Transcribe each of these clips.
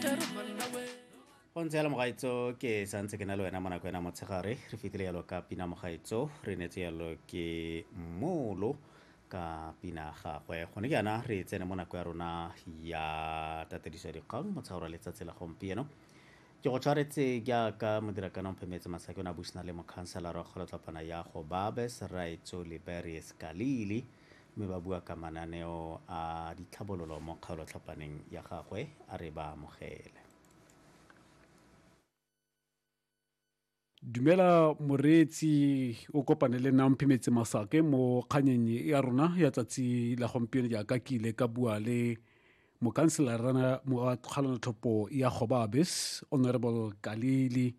go ntse yalo mogaitso ke santse ke na le wena mo nako ena motshegare re fetile yalo ka pina mogaitso re netse yalo ke molo ka pina gagwe gone ke yana re tsene mo nako ya rona ya tatediso ya dikgang motshaora letsatsi la gompieno ke go tshwaretse jaaka modirakana omphemetse masake o ne a busana le mokhanselara wa kgolotlapana ya go babes raitso liberius kalili mme ba bua ka mananeo a ditlhabololo mo kgaolotlhapaneng ya gagwe a re ba amogele. Dumela moreetsi o kopane le Namphi Metse Masake mo kganyeng ya rona ya tsatsi la gompieno jaaka ke ile ka bua le mokanselara wa kgalonatlhopho ya Gobabis Honorable Kalili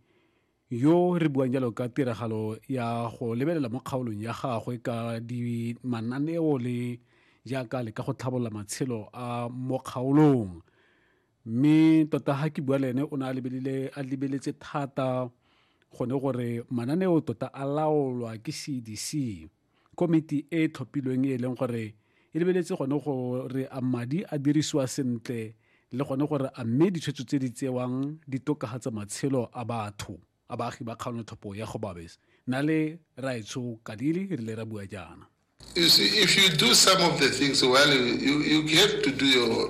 yo re buang jalo ka tiragalo ya go lebelela mo kgaolong ya gagwe ka di mananeo le jaaka le ka go tlhabolola matshelo a mo kgaolong mme tota ga ke bua le ene o ne a lebelele a lebeletse thata gone gore mananeo tota a laolwa ke cdc Komiti e e tlhophilweng e e leng gore e lebeletse gone gore a madi a dirisiwa sentle le gone gore a mme ditshwetso tse di tsewang di tokagatsa matshelo a batho a baagi ba kgaolotlhopho ya Gobabis. Nna le Raetsho Kadili re ile ra bua jaana. You see, if you do some of the things well, you, you, you have to do your